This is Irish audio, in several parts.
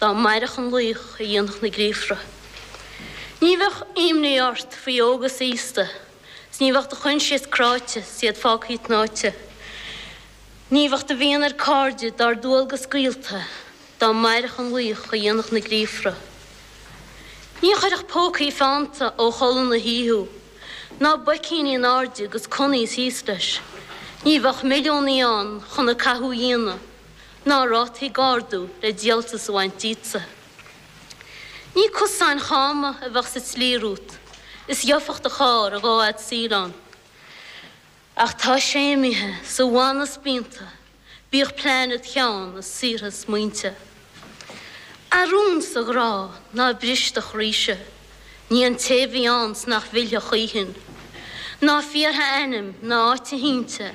Dá mairfeadh an laoch a dhéanfadh na gríofra, ní bheadh imní ort faoi óg is aosta, 's ní bheadh do choinsias cráite 's iad fágthaí tnáite, Ní bheadh do mhian ar cairde dár ndualgas scaoilte, dá mairfeadh an laoch a dhéanfadh na gríofra. Ní chuirfeadh pócaí feannta ó chodladh na hoíche thú, ná boicíní in airde 'gus conaí is thíos leis, Ní bheadh milliúnaí ann chun a cathú dhéanamh, ná rátaí ag ardú le díoltas a bhaint díotsa. Ní cosáin chama a bheadh sa tslí rút, is gheobhadh do charr a dhá fhad saoil ann. Ach tá sé imithe sa bhanna spíonta, bíodh pláinéad Sheáin is saortha smaointe. A rún 's a ghrá ná a bristeach ríse, ní an té a bhí ann 's nach bhfillfidh choíchin, ná fiafraigh a ainm ná áit a shínte,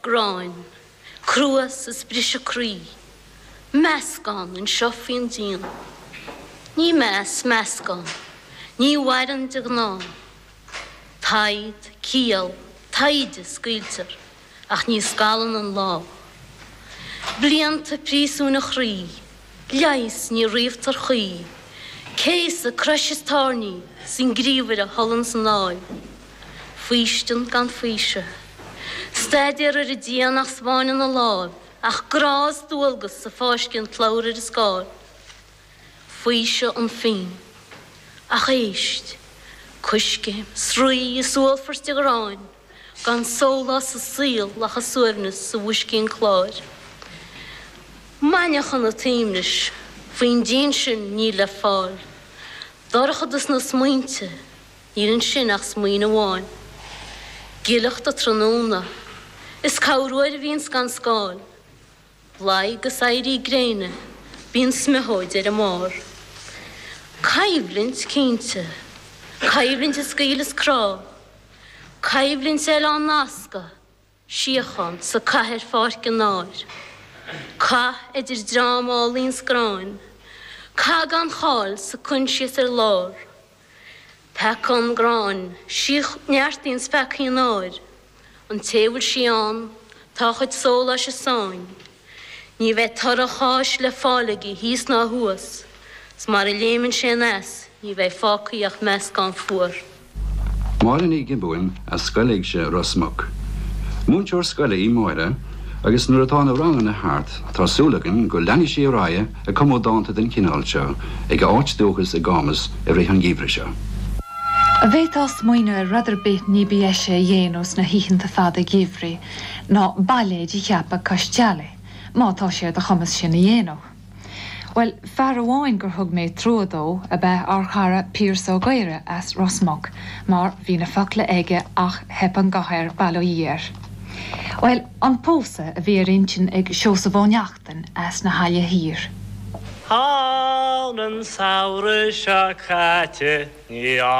Gráin, cruas is briseadh croí. Meascán anseo faoin díon. Ní meas, meascán. Ní mhaireann de ghnáth. Taghd, ciall, taighde, scaoiltear, ach ní scalann an lá. Blianta príosúin a chroí. Leigheas, ní ríomhtar choíche. Céasadh, crois is tairní, 's an gníomhaire anonn 's anall. Faoistin gan faoiseamh. Staidéar ar an díon ach 's peann ina láimh, ach grá is dualgas ag fáisceadh an tslabhra ar an scáil. Faoiseamh an phinn. Ach éist. Coiscéim, sraoth is uallfairt de ghráin, gan sólás sa saol ach a suaimhneas sa mboiscín cláir. Maidneachan an tsuaimhnis. Faoin díon sin níl le fáil. Dorchadas na smaointe. Níl ansin ach smaoin amháin. Giollacht an tráthnóna. Is cabhrú air a bhíonns gan scáil. Luí 'gus éirí gréine, bíonn smeachóid ar a mbarr. Coimhlint, cinnte. Coimhlint is scaoll is crá. Coimhlint eile á nascadh. síocháin 's an cath ar pháirc an áir, cath idir dream álainn 's gráin, cath gan cháil 's coinsias ar lár, peacán gráin, síoch, neartaíonn 's peacaíonn áir, an té a bhfuil sí ann tá a chuid sóláis i sáinn. Ní bheidh toradh a cháis le fáil aige thíos ná thuas, 's mara léimeann sé anois ní bheidh fágthaí ach meascán fuar. Máire Ní Ghiobúin as Scoil Éigse Ros Muc. Múinteoir scoile í Máire agus nuair atá na ranganna thart tá súil againn go leanfaidh sí ar aghaidh ag cumadh dánta den chineál seo ag a háit dúchais i gCámus i rith an gheimhridh seo. An bhféadfá smaoineamh ar rud ar bith ní ba dheise a dhéanamh sna hoícheanta fada geimhridh Ná bailéid a cheapadh cois teallaigh, má tá sé ar do chumas sin a dhéanamh. Bhuel, fear amháin gur thug mé trua dó ab ea ár chara Piaras Ó Gaora as Ros Muc, mar bhí na focla aige ach theip an guth air bail ó Dhia air. Bhuel, an pósadh a bhí ar intinn ag Seosamh Ó Neachtain as na hAille Thiar. An samhradh seo caite ní.